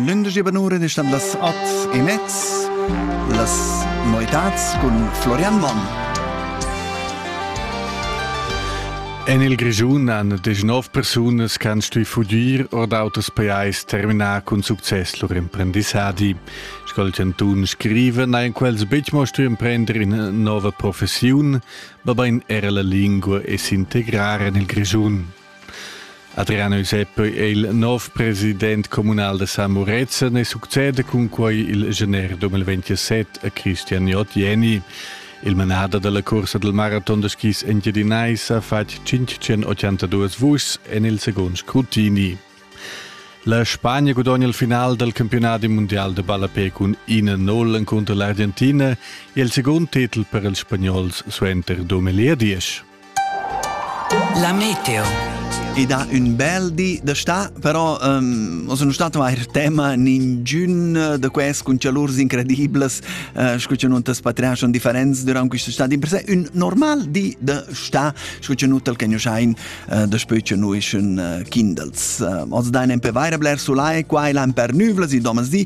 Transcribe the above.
Lündegie Banure distam las at e mezz las noetats cun Florian Mann. En il Grischun han desch nov persunas che han stuì fudir or d'autos pajais terminà cun success lur emprendissadi. Sco il chantun scriva, n'hajan quels betg mo stuì emprender ina nova professiun, mabain era la lingua e s'integrar en il Grischun. Adriano Giuseppe è il nov president communal da San Murezzan e succede cun quai il gener 2027 a Christian Jott Jenny. Il manader della corsa del maraton da skis engiadinaisa ha fatg 582 vuschs en il second scrutini. La Spagna gudogna il final del campionati mondial de ballapé cun 1-0 encunter l'Argentina e il second titel per ils spagnols suenter 2010. La meteo. Ed ha un bel di da sta, però um, sono stato ein tema ningiun da quest con calurs incrediblas, uh, sco che non t'espatriar son differents durant questa estate. In per sé un normal di da sta, sco che nutal che noschain uh, da spöi che noi schon uh, kindels. Uh, oz dain en pe vaira bler sulai, qua e l'an per nuvlas, il domas di,